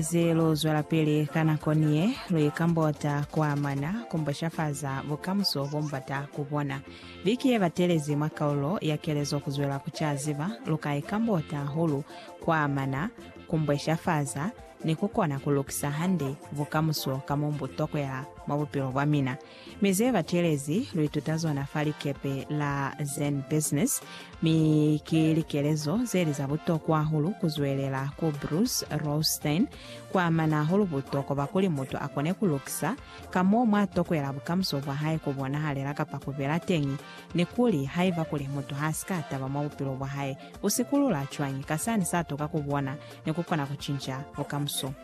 Ze lu zwelapili ka nako niye, lu ikambota ku amana ku mboshafaza bukamuso bo mu bata ku bona. Biki ye batelezi mwa kaulo ya kelezo Kuzwela ku ca Ziba, lu ka ikambota hahulu ku amana ku mboshafaza ni ku kona ku lukisa hande bukamuso ka mo bu tokwela mwa bupilo bwa mina. Mi ze batelezi lu ituta zona fa likepe la Zen Business, mi ki likelezo ze li za butokwa hahulu ku zwelela ku Bruce Rothstein kwa amana hahulu butokwa bwa kuli mutu a kone ku lukisa ka mo mwa tokwela bukamuso bwa hae ku bonahalela kapa ku bela teñi, ni kuli haiba kuli mutu ha si ka taba mwa bupilo bwa hae, u sikulula cwañi ka sani sa tuka ku bona ni ku kona ku cinca bukamuso.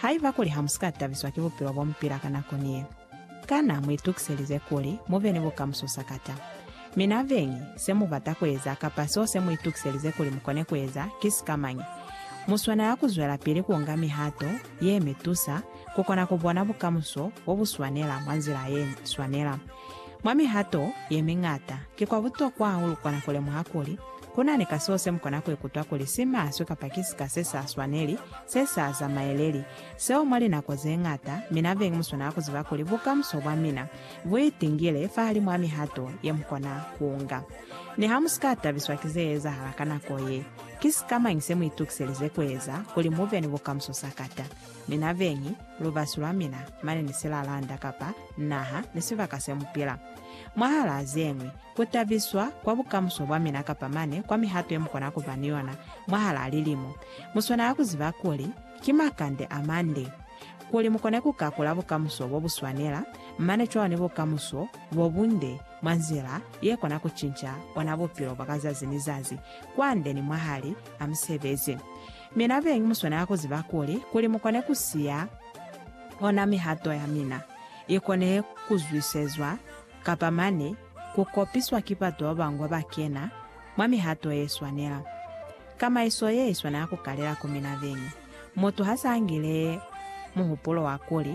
Haiba kuli hamusika tabiswa ki bupilo bomupila ka nako ni ye, kana muitukiselize kuli mube ni bukamuso sakata? Mi nabeñi, semubata kueza kapa seo semuitukiselize kuli mukone kueza ki sikamañi? Muswanela kuzwelapili kuunga mihato yemitusa kukona kubona bukamuso bobuswanela mwa nzila yeswanela. Mwa mihato yemiñata, kikwa butokwa hahulu kukona kulemuha kuli Kunani ka seo semukona kuikutwa kuli si maswe kapa ki sika se sa swaneli, se sa zamaeleli. Seo mwa linako zeñata, mina beñi muswanela kuziba kuli bukamuso bwamina buitingile fahalimu a mihato yemukona kuunga. Niha musika tabiswa ki zeezahala ka nako ye, ki sikamañi semuitukiselize kueza kuli mube ni bukamuso sakata? Mina beñi, lubasi lwamina, mane ni silalanda kapa naha ni sibaka semupila. Mwahalaa zeñwi, Ku tabiswa kwa bukamuso bwa mina kapa mane kwa mihato ye mu kona ku ba ni yona mwahalaa lilimo, mu swanela ku ziba kuli, Ki makande a mande. Kuli mu kone ku kakula bukamuso bo bu swanela, mane cwalo ni bukamuso bo bunde mwa nzila ye kona ku cinca ona bupilo bwa ka zazi ni zazi, kwande ni mwahali a musebezi. Mina beñi mu swanela ku ziba kuli, kuli mu kone ku siya ona mihato ya mina i kone ku zwisezwa, kapa mane ku kopiswa ki batu ba bangwe ba kena mwa mihato ye swanela. Kamaiso ye i swanela ku kalela ku mina beñi. Mutu ha s'a ngile muhupulo wa kuli